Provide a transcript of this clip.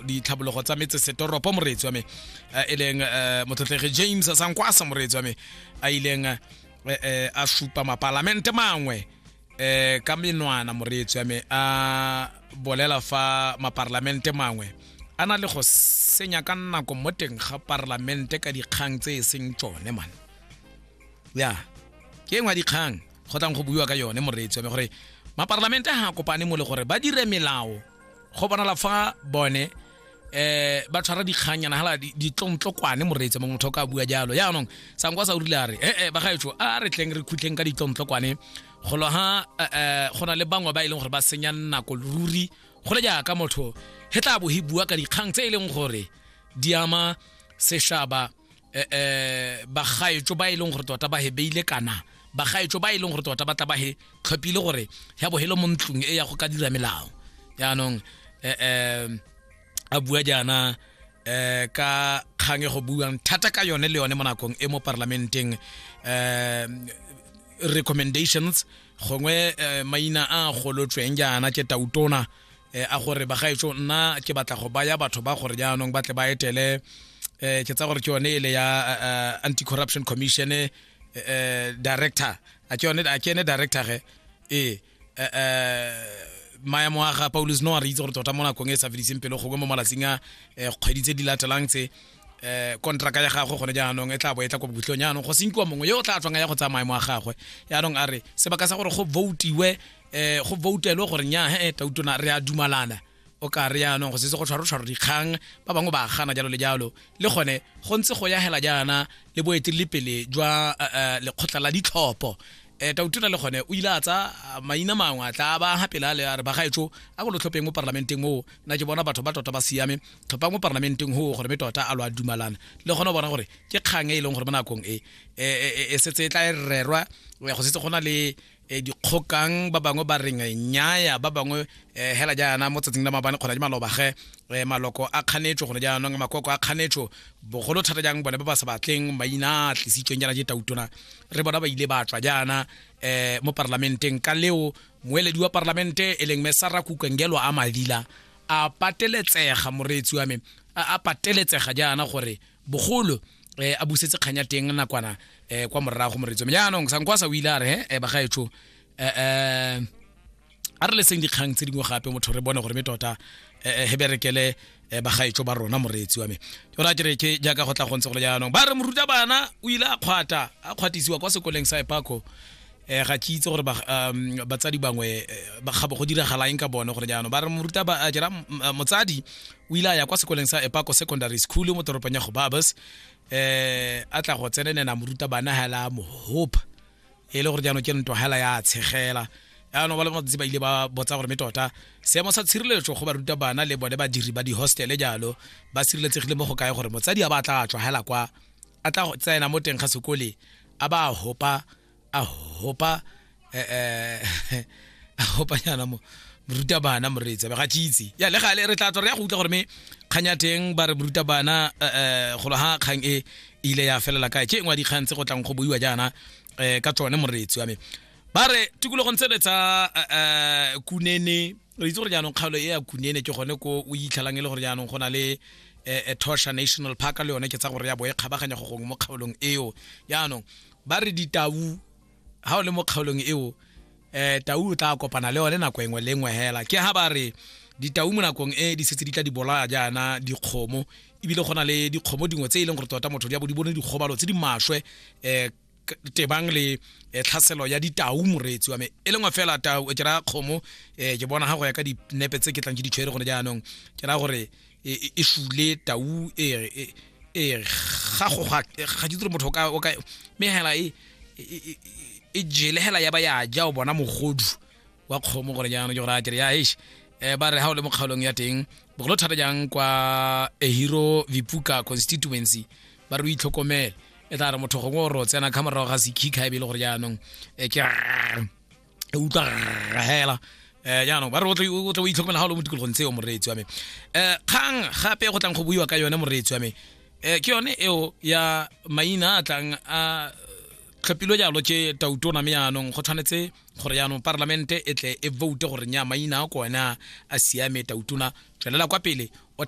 ditlhabologo tsa metsesetoropo moreetsi wa me eh, e leng eh, motlotlege james sankwasa moreetsi wa me a ileng eh, a supa mapalamente mangwe um ka menwana moreetsi wa me a bolela fa maparlamente mangwe a na le go senya ka nako mo teng ga parlamente ka dikgang tse e seng tsone man ya ke engwe dikgang go tlang go buiwa ka yone moreetsi wa me gore maparlamente ga a kopane mo le gore ba dire melao go bonala fa bone eh ba tshwara dikganyana hala ditlontlokwane moreetse mongwe motho ka bua jalo yaanong sankwa sa o rile a re ee eh, eh, bagaetsho a re tleng re khutleng ka ditlontlokwane golo ha eh, go na le bangwe ba e leng gore ba senya nako ruri go le jaaka motho he tla bo he bua ka dikgang tse e leng gore di ama seshaba eh, eh bagaetso ba e leng gore tota ba he beile kana bagaetso ba e leng gore tota ba tla ba he tlhophile gore ya bogelo mo ntlong e ya go ka dira melao yaanong eh, eh a bua jaana eh ka kgang e go buang thata ka yone le yone mo nakong e mo parlamenteng eh recommendations gongwe eh, maina a golotsweng jaana ke tautona eh, a gore bagaetso nna ke batla go baya batho ba gore jaanong ba tle ba etele eh, ke tsa gore ke yone ele ya eh, eh, anti corruption commission eh, eh, director a ke yone a ke ene director ge ee eh, eh, maemo a ga paulus no a re itse gore tota mo nakong e sa fediseng pelo gongwe mo malatsing a eh, kgwedi tse di latelang tse eh kontraka ya gagwe gone jaanong e tla bo e tla kwa bokhutlong jaanong go senkiwa mongwe yo o tla tswang ya go tsaya maemo a gagwe jaanong a re sebaka sa gore go votiwe eh go votelwe gore nya he tautona re a dumalana o ka re yaanong go setse go tshwaro tshwaro dikgang ba bangwe ba gana jalo le jalo le gone go ntse go ya hela jaana le boeteledipele jwa eh, eh, lekgotla la ditlhopho um eh, tautona le gone o ile a tsa ah, maina mangwe a tla ba gapele a le a re bagaetso a ko lo tlhopheng mo parlamenteng moo na ke bona batho ba tota ba siame tlhophang mo parlamenteng goo gore me tota a lo a dumalana le gone o bona gore ke kgang e e leng gore mo nakong e e setse e tla e rerwa go setse go na le e dikgokang ba bangwe ba reng nyaya ba bangwe eh, hela jaana mo tsatsing la mabane kgona di maloba ge eh, maloko a kganetso gone jaanong makoko a kganetso bogolo thata jang bone ba ba sa batleng maina a tlisitsweng jaana je tautona re bona ba ile ba tswa jaana um mo parlamenteng ka leo moeledi wa parlamente e leng me sara kukengelo a madila a pateletsega moreetsi wa me a pateletsega jaana gore bogolo eh, a busetse kganya teng nakwana eh, kwa morago moretso me jaanong sankwasa o ile a re he eh, bagaetsho um eh, eh, a re leseng dikgang tse dingwe gape motho re bone gore me tota eh, he berekele eh, bagaetsho ba rona moreetsi wa me o ra kere ke jaaka go tla go ntse gole jaanong ba re moruta bana o ile a kgwata a kgwatisiwa kwa sekoleng sa epako eh ga ke itse gore um, batsadi bangwe eh, bakgabo go diragalaeng ka bone gore jaanong ba re moruta ba a jera eh, motsadi o ile a ya kwa sekoleng sa epako secondary school mo toropong ya gobabas eh a tla go tsenenena moruta bana hela mohopa e le gore jaanong ke nto hela ya tshegela yaanong ba le matsatsi ba ile ba botsa gore me tota seemo sa tshireletso go baruta bana le bone badiri ba di-hostele jalo ba sireletsegile mo go kae gore motsadi a ba tla tswa hela kwa a tla go tsena mo teng ga sekole a ba hopa a hopa eh, eh, a hopa nyana mo moruta bana moreetsa ga tšitse ya le gale re tla tswa re ya go utlwa gore me kgang ya teng ba re moruta bana eh, eh, golo ga kgang e ile ya felela kae ke e ngwe dikgang tse go tlang go boiwa jaana um ka tsone moreetsi wa me ba re tikologong tse re tsa eh, kunene re itse gore jaanong kgaolo e ya kunene ke gone ko o itlhalang e le gore jaanong go na le um tosha national park le yone ke tsa gore ya bo e kgabaganya go gongwe mo kgaolong eo jaanong ba re ditau ha o le mo kgaolong eo eh tau o tla kopana le one nako engwe le engwe hela ke ha ba re ditau mo nakong e di setse di tla di bolaya jaana dikgomo ebile go na le dikgomo dingwe tse e leng gore tota motho di a bo di bone dikgobalo tse di maswe um tebang le eh, tlhaselo ya ditau moreetsi wa me e lengwe fela tau ke raya kgomo um ke bona ga go ya ka dinepe tse ke tlang ke ditshwere gone jaanong ke raya gore e, e, e šule tau e re e, e ga go ga ga di motho ka o ka me hela e e jele hela ya ba ya ja o bona mogodu wa kgomo gore jaanong ke gore a kere ya eish um ba re ga o le mo kgaolong ya teng bogolo thata jang kwa ehiro vipuka constituency ba re o itlhokomele e tla re motho gongwe o re o tsena kga morago ga sekhiga e be e le gore jaanong um ke e utlwa hela eh jaanong ba re o tle o tle o itlhokomela ga o le mo tikologong tseo moreetsi wa me eh kgang gape go tlang go buiwa ka yone moreetsi wa me eh ke yone eo ya maina a tlang a tlhopilwe jalo ke tautona me yaanong go tshwanetse gore yaanong parlamente e tle e vote gore nya maina a kone a siame tautona tswelela kwa pele